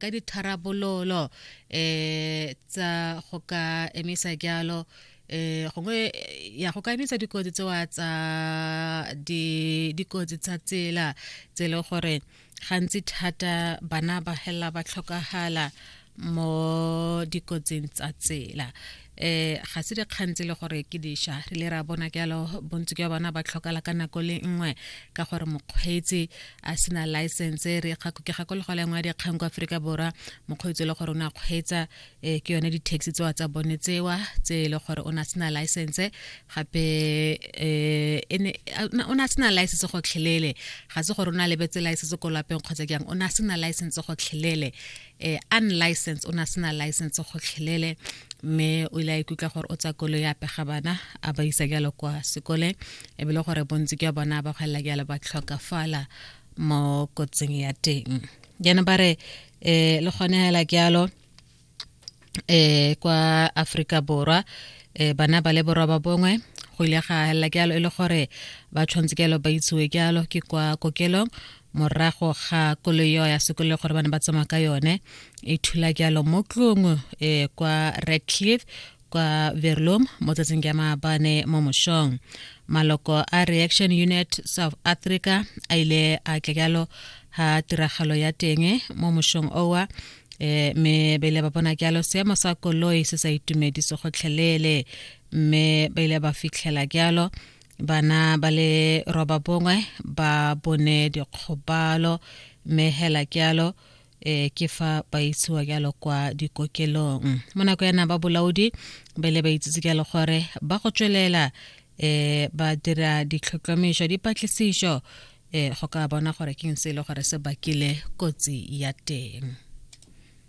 ka ditharabololo um tsa go ka emisa jalo eh gongwe ya go ka emisa dikotsi tsewa tsa dikotsi tsa tsela tse le gore gantsi thata bana ba hela ba tlhokagala mo dikotsing tsa tsela eh ga se dikgang tse le gore ke diša re le ra bona jalo bontsi jwa bona ba tlhokala ka nako le nngwe ka gore mokgweetsi a sena license re ke gakolego le nngwe ya dikgang kwa aforika borwa mokgweetsi e le gore o ne a kgweetsa um ke yone di-taxi tsewa tsa bone tsewa tse e le gore o ne a sena license gape um o ne a sena license gotlhelele ga se gore o ne a lebetse license ko lapeng kgotsa jang o ne a sena license gotlhelele eh, unlicense o ne a sena license gotlhelele mme o ile a ikutlwa gore o tsa kolo ya pega bana a ba isa jalo kwa sekole e bile gore bontsi jwa bona ba gwelela jalo ba tlhokafala mo kotsing ya teng jaanong ba re um le kgonegela jalo eh kwa Afrika Borwa eh bana ba le borwa ba bongwe go ile ga hela ke alo e le gore ba tshwanetse ke alo ba itsiwe ke alo ke kwa kokelong morago ga koloi eo ya sekolo gore bana ba tsamaya ka yone e thula ke alo mo tlong eh kwa Redcliffe kwa Verlom mo tsatsing ke maabane mo moshong maloko a Reaction Unit South Africa a ile a tle ke alo ha tiragalo ya teng mo moshong owa eh me ba ile ba bona ke alo seemo sa koloi se sa itumedise gotlhelele mme ba ile ba fitlhela ke alo bana ba le roba bongwe ba bone dikgobalo mme hela ke alo e ke fa ba isiwa jalo kwa dikokelong mo nako yana ba bolaodi ba ile ba itsitse jalo gore ba go tswelela um ba dira ditlhotlhomišo dipatlisišo e go ka bona gore ke eng se e le gore se bakile kotsi ya teng